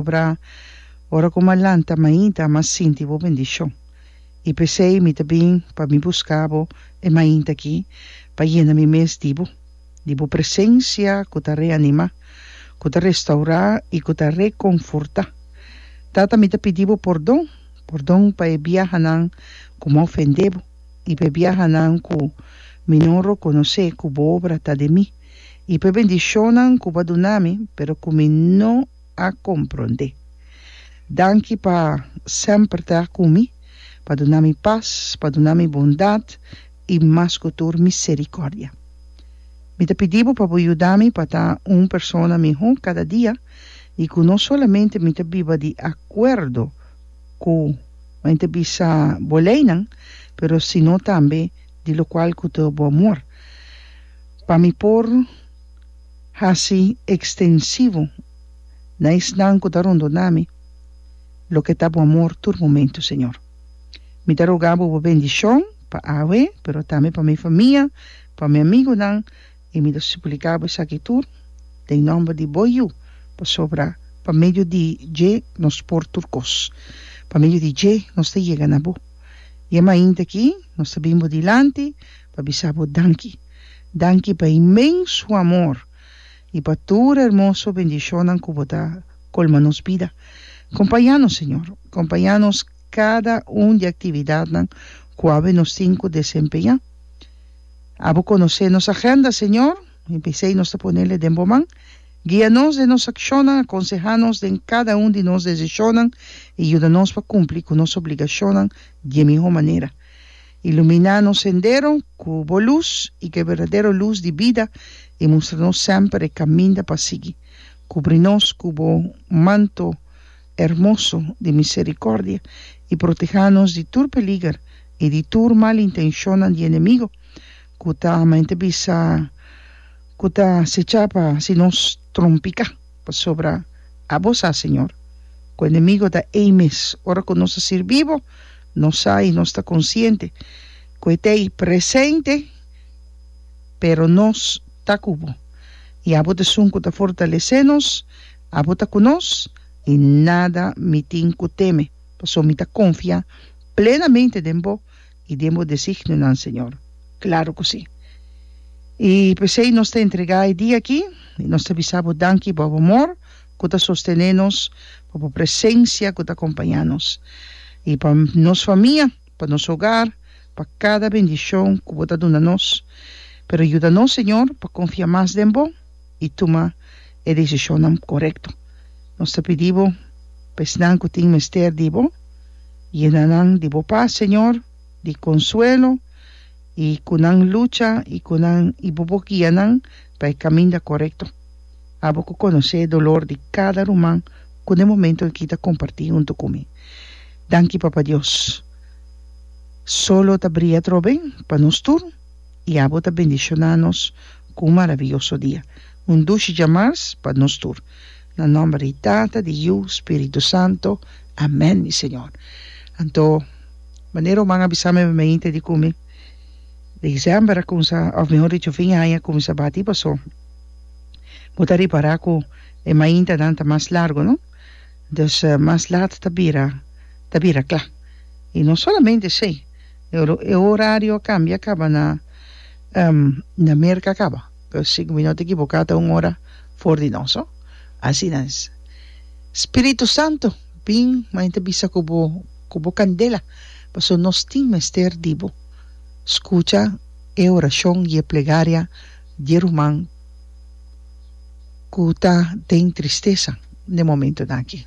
Obra ora ku m'a lanta mainta m'a sinti bo bendishon i p'esei mi ta bin pa mi buska bo e mainta aki pa yena mi mes di bo, di bo presensia ku ta reanimá, ku ta restaurá i ku ta rekonfortá. Tata mi ta pidi bo pordon, pordon pa e biahanan ku m'a ofendé bo i pa e biahanan ku mi no rokonosé ku bo obra ta den mi i pa e bendishonnan ku bo a duna mi pero ku mi no a comprende. Danki pa semper ta cu mi, pa duna mi paz, pa duna mi bondad y mas cu tur misericordia. Mi ta pidi bo pa bo yuda mi pa ta un persona miho cada dia y cu no solamente mi ta biba di acuerdo cu men ta bisa bo leynan, pero sino tambe di locual cu ta bo amor, pa mi por. hasi ekstensivo na esnan ku ta rondona mi, loke ta bo amor tur momentu, Señor. Mi ta roga Bo Bo bendishon pa awe, pero tambe pa mi famia, pa mi amigunan, i mi ta supliká Bo esaki tur den nòmber di Bo Yu, pasobra pa medio di dje nos por tur kos, pa medio di dje nos ta yega na Bo. Dje mainta aki nos ta bin Bo dilanti, pa bisa bo danki. Danki pa e inmenso amor i pa tur hermoso bendishonnan ku bo ta kolma nos bida. Kompañá nos, Señor. Kompañá nos kada un di aktividatnan ku awe nos tin ku desempeñá. Abo konosé nos agenda, Señor, i p'esei nos ta ponel e den bo man. Guia nos den nos akshonnan, akonsehá nos den kada un di nos desishonnan i yuda nos pa kumpli ku nos obligashonnan di e mihó manera. Ilumina nos sendero cu bo luz, i cu e berdadero luz di bida, i mustra nos semper e caminda pa sigui. Cubri nos cu bo manto hermoso di misericordia, i proteha nos di tur peliger i di tur mal intencionnan di enemigo cu ta, men ta bisa, cu ta acecha pa haci nos trompica. Pasobra abo sa, Señor, ku enemigo ta ei mes. Ora ku nos ta sirbi bo, nos sa i nos ta konsiente ku e ta ei presente, pero nos ta ku bo, i abo ta esun ku ta fortalesé nos. Abo ta ku nos, i nada mi tin ku teme, pasobra mi ta konfiá plenamente den bo I den bo designionan, Señor. Claro cu si. I pesey nos ta entrega e dia aki, i nos ta bisa bo danki pa bo amor cu ta sostene nos, pa bo presencia cu ta acompaña nos, i pa nos famia, pa nos hogar, pa cada bendicion cu bo ta duna nos. Pero yuda nos, Señor, pa confia mas den bo. i tuma e desishonnan korekto. Nos ta pidi bo pa esnan ku tin mester di bo, yena nan di bo pas, Señor, di konsuelo, i ku nan lucha i ku nan i bo por guia nan pa e kaminda korekto. Abo ku konosé e dolor di kada ruman ku den momentu aki ta kompartí huntu ku mi. Danki, Papa Dios. Solo ta bria atrobe pa nos tur. i abo ta bendishoná nos ku un maraviyoso dia, un dushi djamars pa nos tur. Na nòmber di Tata, di Yu, Spiritu Santo. Amèn, mi Señor. Anto, manera Oman a bisa mi pa mi inter di ku mi December a kumsa, òf mihor dicho fin di aña a kumsa bati pasó bo ta ripará ku e maintanan ta mas largu, no? Dus mas lat ta bira, ta bira kla. I no solamente esei. E horario a cambia caba na na Merca caba si cu mi no ta equivoca ta un ora for di nos ho asina es spiritu santo bin ma enta bisa cu bo cu bo candela pasobra nos tin mester di bo scucha e oracion y e plegaria di e ruman cu ta den tristesa na e momentonan aki.